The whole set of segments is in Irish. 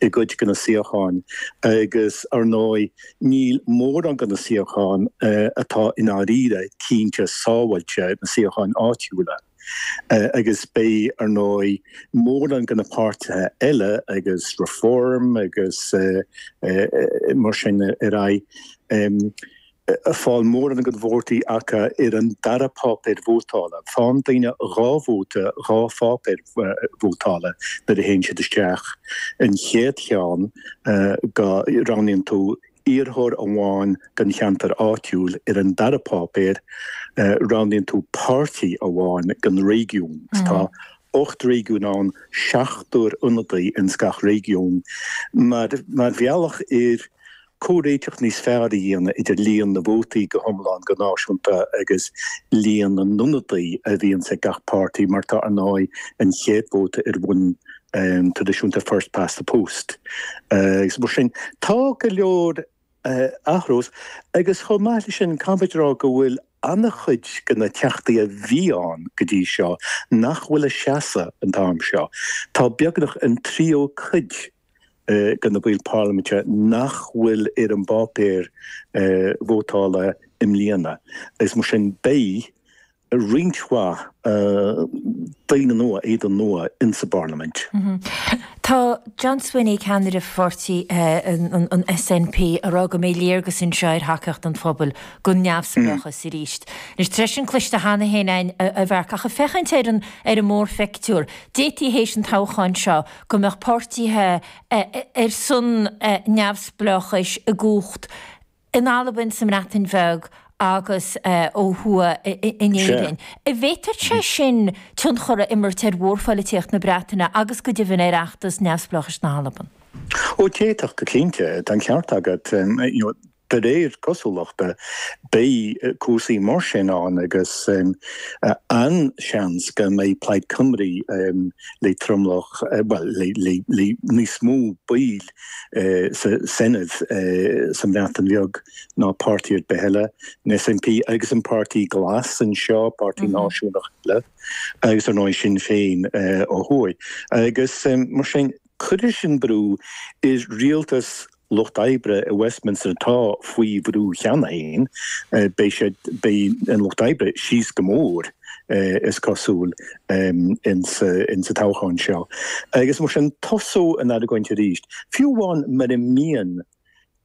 i gcuid de na suíocháin agus, ar ndóigh, níl mórán de na suíocháin atá i ndáiríre cinnte sábháilte, na suíocháin áitiúla. Agus beidh, ar ndóigh, mórán de na páirtithe eile agus Reform agus mar sin ar aghaidh. ag fáil mórán de na vótaí acu ar an dara páipéar vótála. Faigheann daoine dhá vóta dhá pháipéar vótála nuair a théann siad isteach. An chéad cheann go roghnaíonn tú iarrthóir amháin don cheantar áitiúil, ar an dara páipéar roghnaíonn tú páirtí amháin don réigiún. Tá ocht réigiún ann, seachtar ionadaí ins gach réigiún. Mar bhealach ar. comhréiteach níos fearr a dhéanamh idir líon na vótaí go hiomlán, go náisiúnta, agus líon na n-ionadaithe a bhíonns ag gach páirtí, mar atá, ar ndóigh, an chéad vóta ar bhonn traidisiúnta, first past the post, agus mar sin. Tá go leor ag athrú, agus chomh maith leis sin, caithfimid a rá go bhfuil an-chuid de na Teachtaí a bhí ann go dtí seo nach bhfuil ag seasamh an t-am seo. Tá beagnach an tríú cuid de na baill parlaiminte nach bhfuil ar an bpáipéar vótála i mbliana, is mar sin beidh roinnt mhaith daoine nua, éadain nua in sa bparlaimint. Tá John Swinney, ceannaire pháirtí an SNP, ag rá go mbeidh léargas anseo ar thacaíocht an phobail don neamhspleáchas arís. Anois, tá sé sin cloiste cheana féin, a Mharc, ach ag féachaint ar an mórphictiúr, d'fhéadfaí théis an toghcháin seo go mbeadh páirtithe ar son neamhspleáchais i gcumhacht in Albain, sa mBreatain Bheag agus ó thuaidh in Éirinn. An bhféadfadh sé sin tionchar a imirt ar mhórpholaitíocht na Breataine agus go deimhin ar fheachtas neamhspleáchais na hAlban. Ó d'fhéadfadh go cinnte, tá an ceart agat. De réir cosúlachta, beidh cúrsaí mar sin ann agus an-seans go mbeidh Plaid Cymru le tromlach, bhuel, le níos mó baill sa Senedd sa mBreatain Bheag ná páirtí ar bith eile, an SNP agus an Páirtí Glas anseo, páirtí náisiúnach eile, agus ar ndóigh Sinn Féin ó thuaidh. Agus mar sin. Cuirfidh sin brú ar rialtas Lucht Oibre i Westminster atá faoi bhrú cheana féin. Beidh siad, beidh an Lucht Oibre síos go mór, is cosúil, in sa toghchán seo. Agus mar sin tosóidh an argóint arís. Fiú amháin mura mbíonn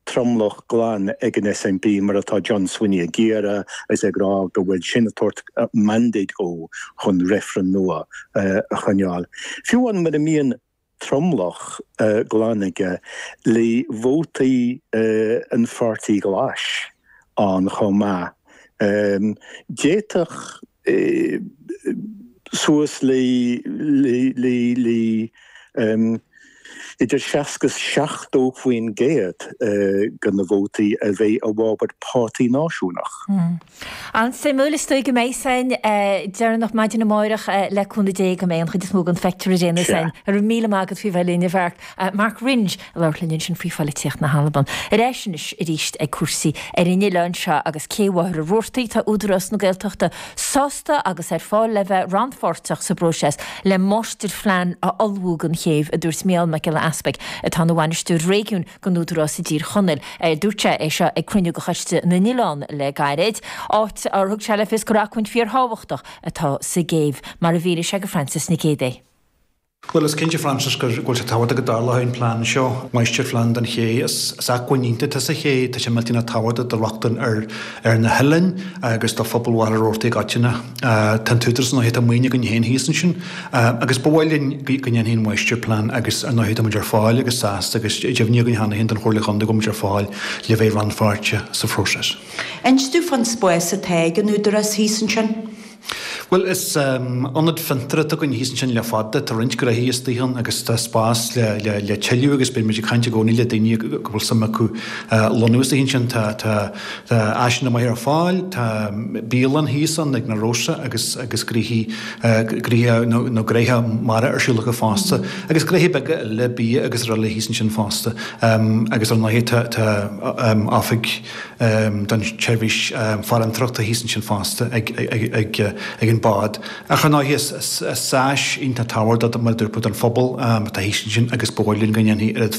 tromlach glan ag an SNP, mar atá John Swinney ag iarraidh, agus é ag rá go bhfuil sin ag tabhairt mandate dhó chun reifreann nua a choinneáil. Fiú amháin mura mbíonn tromlach glan aige, le vótaí an Pháirtí Ghlais ann chomh maith, d'fhéadfadh, suas le idir 60 is 70% de na vótaí a bheith i bhfabhar páirtí náisiúnach. An-suimiúil is dóigh go mbeidh san deireanach maidin amáireach le cúnamh Dé go mbeidh an chuid is mó den phictiúr i réim san. Go raibh míle maith agat faoi bheith linn, a Mharc. Mark Wringe. Labhairt linn ansin faoi pholaitíocht na hAlban. Ar ais anois arís ag cúrsaí ar an oileán seo agus Cé Mhachaire Rabhartaigh, tá Údarás na Gaeltachta sásta agus ar fáil le bheith rannpháirteach sa bpróiseas le máistirphlean a ullmhú don chéibh, a dúirt Mícheál Mac Giolla Easbuig, atá ina bhainisteoir réigiúin don Údarás i dTír Chonaill. Dúirt sé é seo ag cruinniú de Choiste na nOileán le gairid, áit ar thug sé le fios gur acmhainn fíorthábhachtach atá sa gcéibh, mar a mhínigh sé do Frances Nic Géadaigh. Bhuel, is cinnte, Frances, go bhfuil sé tábhachtach go dtarlóidh an plean seo, máistirphlean don ché. Is acmhainn iontach atá sa ché, tá sé millteanach tábhachtach do rochtain ar na hoileáin agus do phobal Mhachaire Rabhartaigh i gcoitinne. Tá an t-údarás, ar ndóigh, tá maoin againn féin thíos ansin agus ba mhaith linn go ndéanfaí an máistirphlean agus, ar ndóigh, táimid ar fáil agus sásta agus deimhnithe againn cheana féin don Chomhairle Chontae go bhfuimid ar fáil le bheith rannpháirteach sa phróiseas. Inis dom faoin spás atá ag an údarás thíos ansin. Bhuel, is ionad fiontar atá againn thíos ansin le fada. Tá roinnt gnóthaí istigh ann agus tá spás le tuilleadh agus beidh muid ag caint i gcónaí le daoine go bhfuil suim acu lonnú istigh ansin. Tá áiseanna maithe ar fáil, tá bialann thíos ann ag Narosa agus gnóthaí nó gnóthaí mara ar siúl acu fosta agus gnóthaí beaga eile bia agus araile thíos ansin fosta. Agus ar ndóighe tá oifig. don tseirbhís farantóireachta thíos ansin fosta ag an bád. Ach ar ndóigh is áis iontach tábhachtach mar a dúirt mé don phobal atá thíos ansin agus ba bhreá linn go ndéanfaí oiread